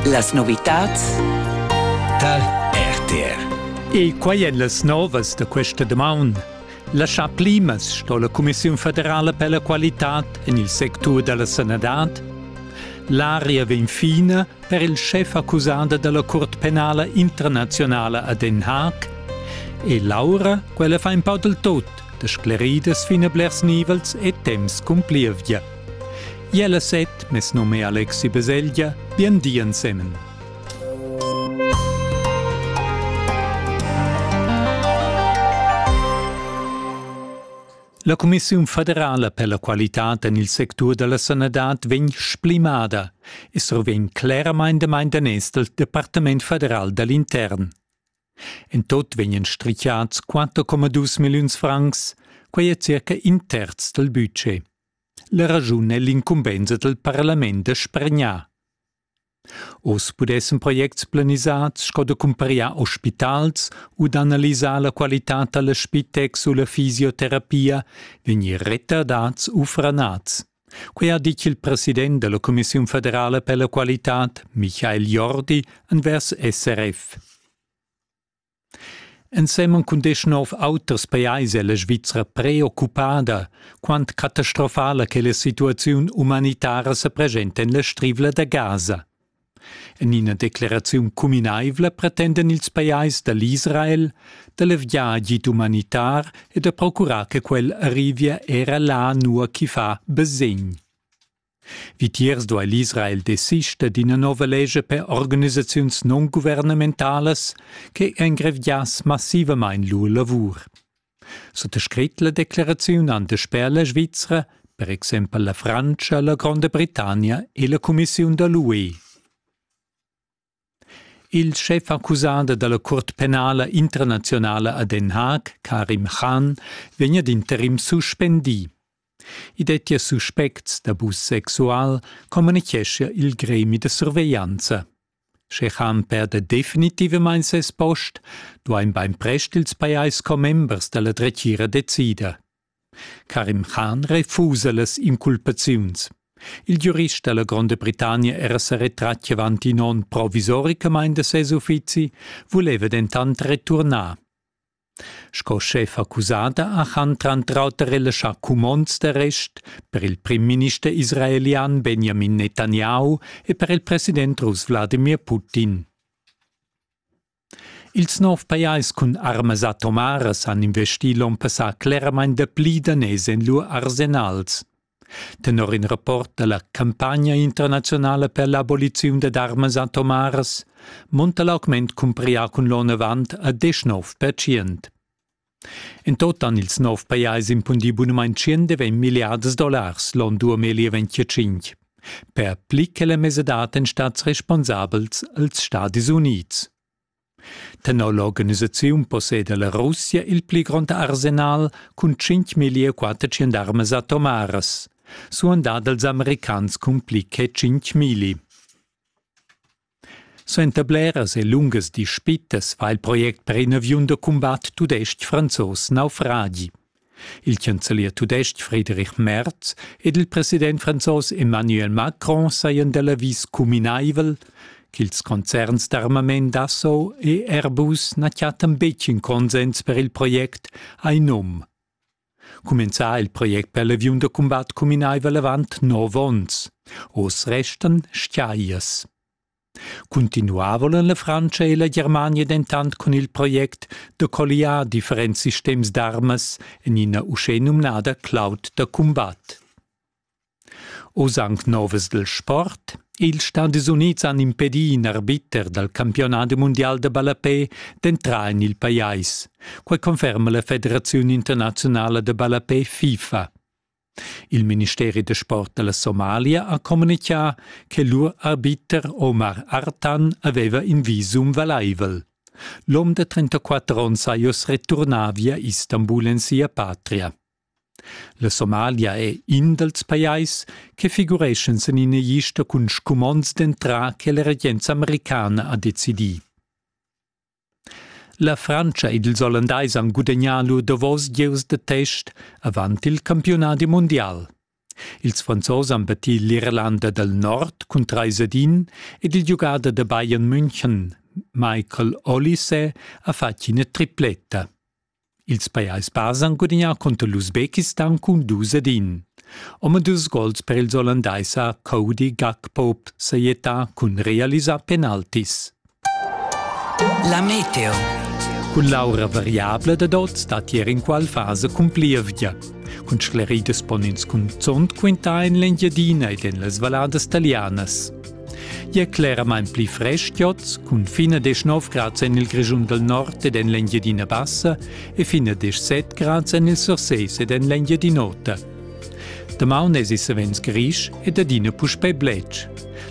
Las novitads Tal RTR E quai èn las novas da questa damaun. La chaplimas sto la Cumissiun federala per la qualitad en il sectur da la sanadad. L'aria vegn fina per il schef accusada da la Curt penala internazionala a Den Haag. E Laura, quella fa in pau del tot, da scleridas fin a blers nivels e temps cumplievgia. Jella set, mes num è Alexi Beseglia, bien di ensemen. La Commissiun federala per la qualità en il sectur da la sanadad vegn splimada e survegn cleramain damain daners dal Departament federal da l'intern. En tot vegnan strichiads 4,2 milliuns francs, quai è circa in terz dal budget. La raschun è l'incumbensa dal parlament da spargnar. Oz pudessan projects planisads sco da cumpariar ospitals u d'analisar la qualitad da l'Spitex u la fisioterapia vegnir retardads u franads. Quai ha ditg il president da la Commissiun federala per la qualitad, Michael Jordi, envers SRF. Ensemen cun deschnov auters pajais è la Svizra preoccupada, quant catastrofala che la situaziun umanitara sa preschenta en la Strivla da Gaza. En ina decleraziun cuminaivla pretendan ils pajais da l'Israel da leviar agid umanitar e da procurar che quel arrivia era là nua ch'i fa basegn. Vitiers duai l'Israel desister d'ina nova lescha per organisaziuns non-guvernementalas che engreviass massivamain lur lavur. Suttascrit la decleraziun han dasper la Svizra per exempel la Frantscha, la Gronda Britannia e la Cumissiun da l'UE. Il schef-accusader dalla Cuort penala internazionala a Den Haag, Karim Khan, vegn ad interim suspendì. I dettia suspects d'abus sexual, communichescha il gremi da surveglianza. Sche Khan perda definitivamain ses post, duain bainprest ils pajais commembers da la dretgira decider. Karim Khan refusa las inculpaziuns. Il giurist dalla Gronda Britannia era sa retratg avant in onn provisoricamain da ses uffizi, vuleva dentant returnar. Sco schef accusada ha Khan tranter auter relaschà cumonds d'arrest per il primminister israelian Benjamin Netanyahu e per il president russ Wladimir Putin. Ils nov pajais cun armas atomaras han investì l'onn passà cleramain dapli daners en lur arsenals. Tenor in rapport da la campagna internazionala per l'aboliziun dad armas atomaras monta l'augment cumprià cun l'onn avant a 19%. En tot han ils nov pajais impundì bunamain tschient e ventg milliards dollars l'onn 2025. Per pli che la mesadad èn stads responsabels als Stadis Unids. Tenor l'organisaziun posseda la Russia il pli grond arsenal cun 5.400 armas atomaras, suandà dals americans cun pli che 5.000. Suenter bleras e lungas dispitas va il project per in aviun da cumbat tudestg-franzos naufragi. Il chancelier tudestg Friedrich Merz ed il president franzos Emmanuel Macron sajan da l'avis cuminaivel ch'ils concerns d'armament Dassault e Airbus na chattan betg in consens per il project, hai num. Cumenzà il project per l'aviun da cumbat cuminaiva l'avant nov ons. Oz restan stiaias. Cuntinuavo en la Frantscha e la Germania dentant cun il project da colliar differents sistems d'armas en ina uschè numnada cloud da cumbat. Oz anc novas dal sport. Ils Stadis Unids han impedì in arbiter dal campiunadi mundial da ballapè d'entrar en il pajais. Quai conferma la Federaziun internaziunala da ballapè FIFA. Il ministeri da sport da la Somalia ha communitgà che lur arbiter Omar Artan aveva in visum valaivel. L'om da 34 onns ha oz returnà via Istanbul en sia patria. La Somalia è in dals pajais che figureschan sin ina lista cun scumonds d'entrar che la regenza americana ha decidì. La Frantscha ed ils Ollandais han gudagnà lur davos gieus da test avant il campiunadi mundial. Ils Franzos han battì l'Irlanda dal Nord cun trais ad in ed il giugader da Bayern München, Michael Olise, ha fatg ina tripletta. Ils pajais bas han gudagnà cunter l'Usbekistan cun dus ed in. Omadus gols per ils Ollandais ha Cody Gakpoop sajettà cun realisar penaltis. La meteo. Cun l'aura variabla dad oz dat ier inqual fasa cun plievgia. Cun scleridas pon ins cunzont quintar en l'Engiadina ed en las valladas talianas. E cleramain pli frestgiots, cun fine 19 grads en il Grischun del Nord ed en l'Engiadina Bassa e fine 17 grads en il Surseis ed en l'Engiadin'Ota. Damaun es savens grisch ed adina puspè bletsch.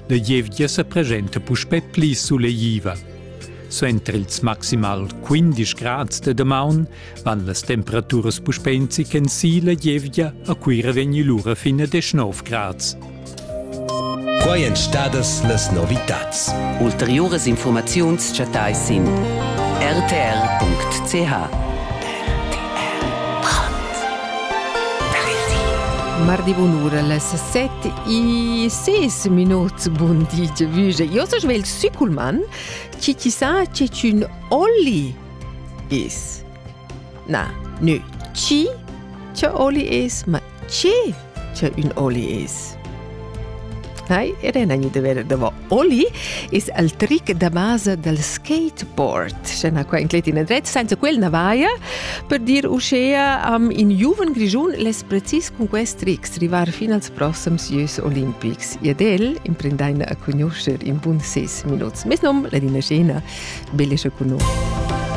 La gievgia sa presenta puspè pli suleiva. Suenter ils maximal 15 grads de damaun Van las temperaturas puspè in zic en si la gievgia, a Cuira vegni lura fin a 19 grads. Quai èn stadas las novitads. Ulteriuras informaziuns chattais sin rtr.ch. Mardi bunura las 7 e 6 minuts bun di, Vüge. Io so svegl Sükulman, ci chissà c'è un Olli Dis. Na, nü chi? Che oli es? Ma chi? Che ün oli es? Hai, ed è nagni deve davo Oli is al trick da basa dal skateboard. Scena qua in cletin e dret, senza quel na vaia, per dir uschea am in giuven grigiun les precis cun quest tricks rivar fin als prossams Jeux Olimpics. Ed el imprendaina a conoscer in bun ses minuts. Mes nom, la dina scena, belesce cu noi.